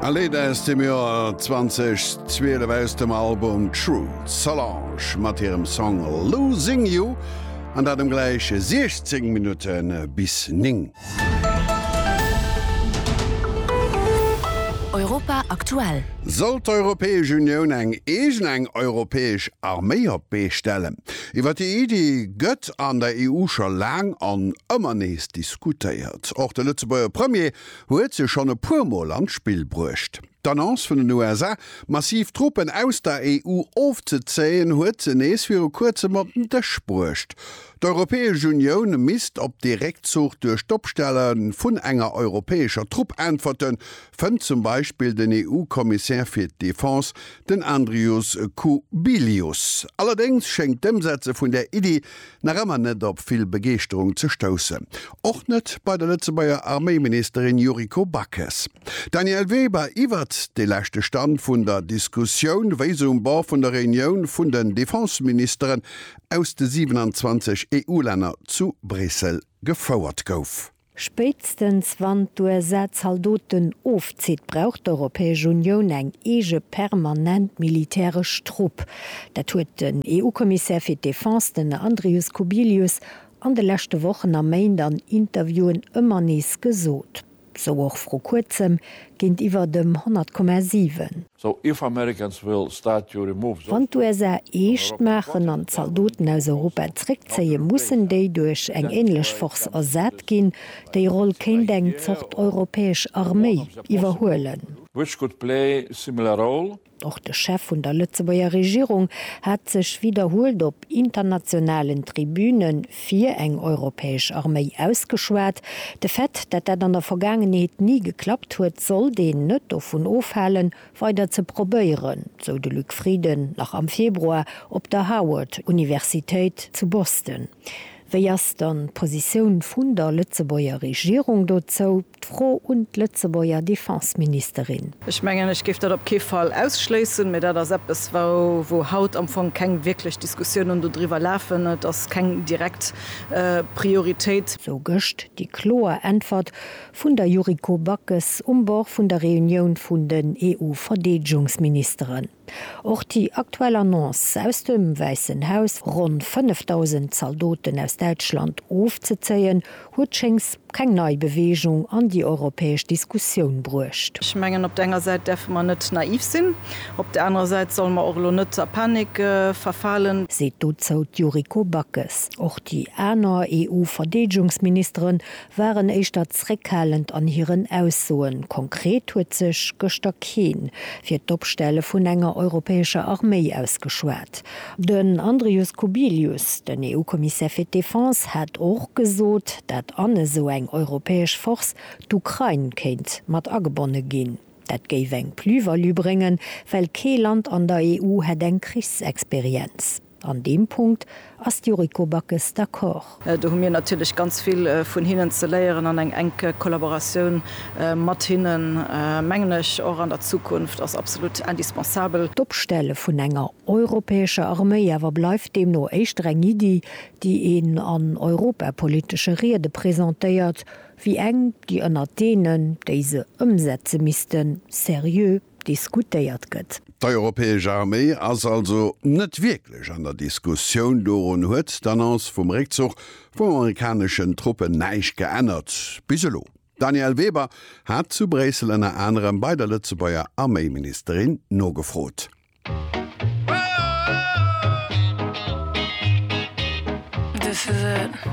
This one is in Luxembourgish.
E Léit aus dem Joer 2012 aus dem Album True, d'Solange mat hirem Song Losing You, an dat um gläich 16 Minutte bis 9. Europa aktuell. Soll d'Europäesch Unioun eng eegen, eng europäesch Arméi op d'Bee stellen? Iwwer déi Iddi gëtt an der EU scho laang an ëmmer nees diskutéiert. Och de Lëtzebuerger Premier huet se schonn e puer Mol an d'Spill bruecht. D'Annonce vun den USA, massiv Truppen aus der EU ofzezéien, huet se nees viru Kuerzem op den Dësch bruecht. D'Europäesch Unioun misst op dee Réckzuch duerch d'Opstelle vun enger europäescher Trupp äntwerten, fënnt zum Beispill den EU-Kommissär fir d'Defense, den Andrius Kubilius. Allerdéngs schéngt d'Ëmsetze vun där Iddi nach ëmmer net op vill Begeeschterung ze stoussen. Och net bei der Lëtzebuerger Arméiministerin Yuriko Backes. Danièle Weber iwwert de leschte Stand vun der Diskussioun, wéi se um Bord vun der Reunioun vun den Defenseministeren aus de 27 EU-Länner zu Bréissel gefouert gouf. Spéitstens wann d'USA Zaldoten ofzitt, brauch d'Europäesch Unioun eng eege permanent militäresch Trupp. Dat huet den EU-Kommissär fir d'Defense, den Andrius Kubilius, an de leschte Wochen a Méint an Interviewen ëmmer nees gesot. Sou och vru kuerzem géintiwwer dem 100,7. So if Americans will start to remove those Wann d'USA eescht maachen an d'Zaldoten aus Europa zréckzéien, mussen déi duerch eng änlech Force ersat ginn. Déi Roll kéint eng Zort europäesch Arméi iwwerhuelen. Which could play similar role. Och de Chef vun der Lëtzebuerger Regierung hat sech widderhuelt op internationalen Tribüne Fir eng europäesch Arméi ausgeschwat. De Fait, dat dat an der Vergaangenheet ni geklappt huet, sollt een net dovun ofhalen, weider ze probéieren, sou de Luc Frieden nach am Februar op der Howard Universitéit zu Boston. Wéi ass dann d'Positioun vun der Lëtzebuerger Regierung dozou? D'Fro un d'Lëtzebuerger Defenseministerin. Ech mengen, ech géif dat op kee Fall ausschléissen, mä dat ass eppes, wou haut am Fong keng wierklech Diskussiounen dodriwwer lafen. Et ass keng direkt Prioritéit. Sou gëscht déi kloer Äntwert vun der Yuriko Backes um Bord vun der Reunioun vun den EU-Verdeedegungsministeren. Och déi aktuell Annonce aus dem Wäissen Haus, ronn 5.000 Zaldoten aus Däitschland ofzezéien, huet schéngs keng nei Beweegung an déi europäesch Diskussioun bruecht. Ech mengen, op der enger Säit däerfe mer net naiv sinn, op der anerer Säit solle mer och elo net a Panik verfalen. Seet dozou d'Yuriko Backes. Och déi aner EU-Verdeedegungsministeren waren éischter zréckhalend an hiren Aussoen. Konkret huet sech gëschter kee fir d'Opstelle vun enger europäescher Arméi ausgeschwat. Den Andrius Kubilius, den EU-Kommissär fir d'Defense, hat och gesot, dat an esou eng europäesch Force d'Ukrain kéint mat agebonne ginn. Dat géif eng Plus-value bréngen, well kee Land an der EU hätt eng Krichsexperienz. An deem Punkt ass d'Yuriko Backes d'accord. Do hu mir natierlech ganz vill vun hinnen ze léieren an eng enk Kollaboratioun mat hinnen, mengen ech, och an der Zukunft ass absolut indispensabel. D'Opstelle vun enger europäescher Arméi awer bleift deemno éischter eng Iddi, déi een an europapolitesche Riede presentéiert, wéi eng, déi ënnert deenen, déi se ëmsetze missten, serieux diskutéiert gëtt. D'europäesch Arméi ass also net wierklech an der Diskussioun. Dorun huet d'Annonce vum Réckzuch vum amerikaneschen Truppen näischt geännert bis elo. D'Danièle Weber hat zu Bréissel ënner anerem bei der Lëtzebuerger Arméiministerin nogefrot.